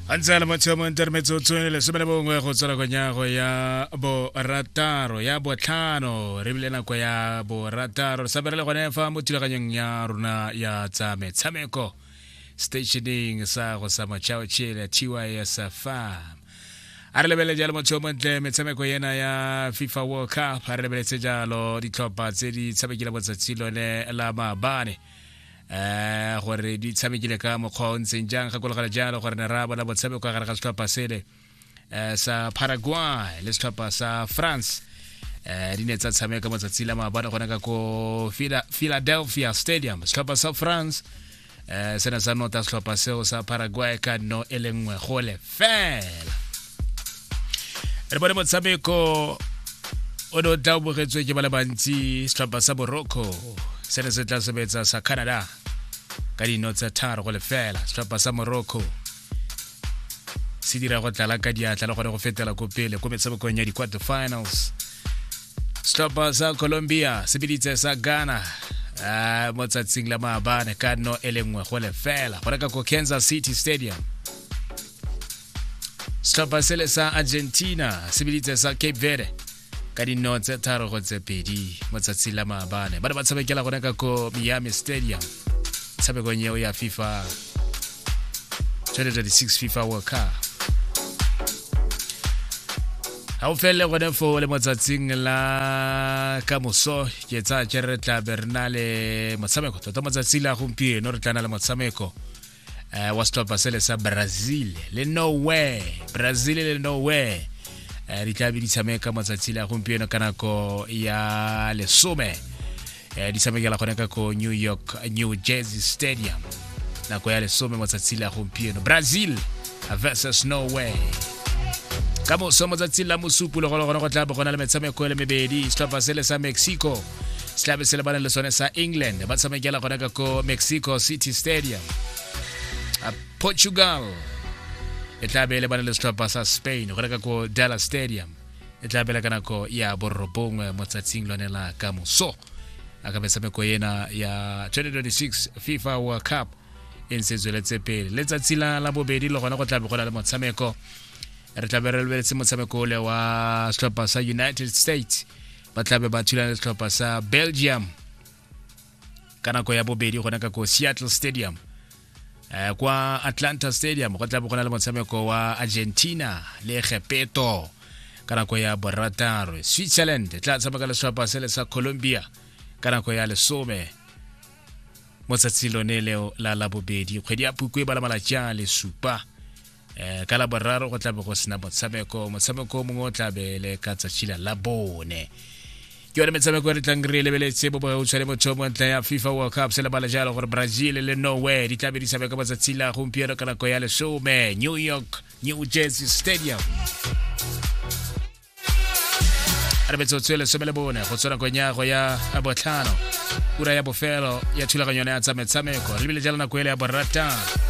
a ntse a le motsheo mo intermetse o tshwene lesome le bongwe go tswela konyago ya borataro ya botlhano re bile nako ya borataro re saberele gone fa mo thulaganyong ya rona ya tsa metshameko stationeng sa go sa mochao chile tys farm a re lebelele jalo motho yo montle metshameko ena ya fifa world cup a re lebeletse jalo ditlhopha tse di tshamekile botsatsi lone la maabane eh gore di tshamekile ka mokgwa o ntseng jang gakologela jalo gore ne ra bona botshameko ka gare ga setlhopha sele eh, sa paraguay le setlhopha sa france eh di ne tsa tshameka matsatsi la maabane gone ka ko philadelphia stadium setlhopha sa france eh se ne sa nota setlhopha seo sa paraguay ka no e le nngwe gole fela re bone motshameko o ne o tla o bogetswe ke ba le bantsi setlhopha sa boroko se ne se tla sebetsa sa canada ka dino tsa tharo go lefela setlhopha sa morocco se dira go tlala ka diatla le gone go fetela ko pele ko metshamekong ya di-quarter finals setlhopha sa colombia se biditse sa ghana uh, mo tsatsing la maabane ka no e le nngwe go lefela go reka ko kansas city stadium setlhopha sele sa argentina se biditse sa cape verde ka dinno tse tharo go tse pedi mo tsatsi la maabane ba ne ba tshamekela gone ka ko miami stadium tshamekong eo ya fifa 2026 fifa world cup ga o felele gone fo le motsatsing la ka moso ke tsaya ke re tla be re na le motshameko tota motsatsi la gompieno re tla na le motshameko eh, wa setlhopha sele sa brazil le norway brazil le norway eh, di tlabe di tshameka matsatsi le a gompieno ka nako ya lesome eh, di tshamekela gone ka ko new york new jersey stadium nako ya lesome matsatsi le a gompieno brazil versus norway ka moso matsatsi la mosupu le gone gone go tla bo gona le metshameko e le mebedi setlhopha sele sa mexico setlhabe se lebane le sone sa england ba tshamekela gona ka ko mexico city stadium a portugal e tla be e lebane le setlhopha sa spain go reka ko dallas stadium e tla bela ka nako ya borobongwe mo tsatsing lone la ka moso a ka metshameko ena ya 2026 fifa world cup e ntse e tsweletse pele letsatsi la la bobedi le gona go tlabe go na le motshameko re tlabe re lebeletse motshameko ole wa setlhopha sa united states ba tlabe ba thulana le setlhopha sa belgium ka nako ya bobedi gona ka ko seattle stadium eh, kwa atlanta stadium go tlabe go na le motshameko wa argentina le gepeto ka nako ya borataro switzerland e tla tshameka le setlhopha se le sa colombia ka nako ya lesome mo tsatsing lone leo la labobedi kgwedi ya phukwe ba la malatsi a le supa eh ka la boraro go tlabe go sena motshameko motshameko mongwe o tlabe le ka tsatsi la la bone ke yone metshameko e re tlang re e lebeletse bo bogautshwa le motho mo ntlha ya fifa world cup se lebala jalo gore brazil le norway di tlabe di tshameka ka matsatsi la gompieno ka nako ya lesome new york new jersey stadium re metsotso e lesome le bone go tswa nakong ya go ya botlhano ura ya bofelo ya thulaganyo ya tsa metshameko re lebile jalo nako ele ya boratano